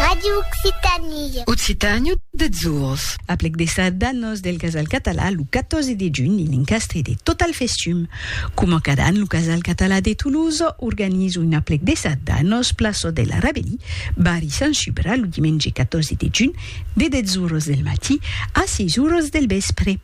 Ràdio Occitània. Occitània deths ors. Aplec de sardanos del Casal Català lo 14 de junh en l'encastre de Total Festum. Coma cada an lo Casal Català de Toulouse organiza un aplec de sardanos plaça de la Rabellie, barri Sant Subra lo dimenge 14 de junh de deths oras del matí a 6 oras del vèspre.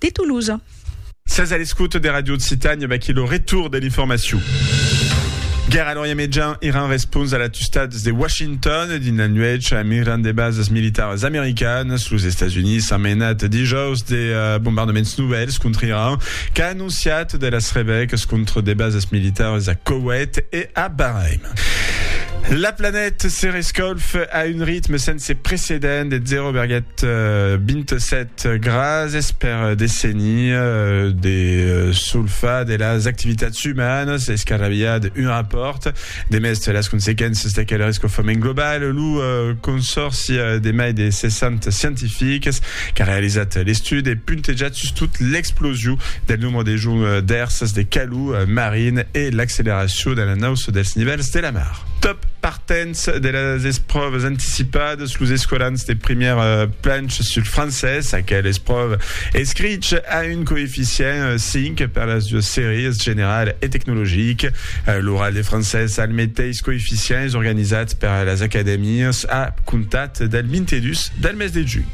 de Toulouse. Sètz a l'escouta de Radio Occitània, vaquí lo retour de l'informacion. Guèrra a l'Orient Mejan, Iran respons a l'atustats de Washington dins la nuèch a miran de basas militaras americanas. Los Estats Units an menat dijaus de bombardaments novèls contra Iran, qu'a anonciat de las rebècas contra de basas militaras a Koweït e a Bahrain. La planèt se rescalf a un ritme sense precedent de 0,27 Grases per dessenir de solfar de las activitats umanas es qu'arraviá d'un rapòrt. Demest las consequéncias d'aquel rescofament global, lo Consòrci de mai de 60 scientifics qu'a realizat l'estudi e puntejat sustot l'explosiu del nombre de joncs d'èrsas de calor marin e l'acceleracion de la nausa dels nivèls de la mar. Dens de las espròvas anticipadas, los escolans de primièr planch sul francés, aquel espròva escrich a un coeficient 5 per las duas sèries, general e tecnologic. L'oral de francés al meteis coeficient es organizat per las acadèmias a comptat del 22 del mes de junh.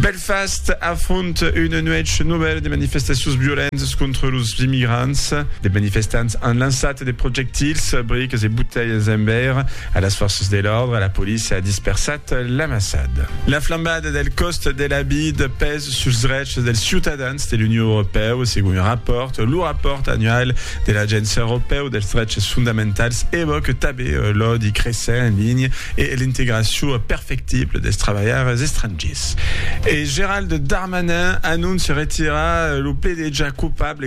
Belfast afronta una nuèch novèla de manifestacions violentas contra los immigrants. De manifestants an lançat De projectils, briques e botelhas en veire a las fòrças de l'òrdre, la polícia a dispersat l'amassad. La flambada del còst de la vid pes suls drechs dels ciutadans de l'Union Europèu, segon un rapòrt. Lo rapòrt annual de l'Agéncia Europèu dels Drechs Fondamentals evòque tanben l'òdi cressent en linha e l'integracion perfectible dels trabalhaires estrangiers. E Gérald Darmanin anóncia retirar lo pledejar coupable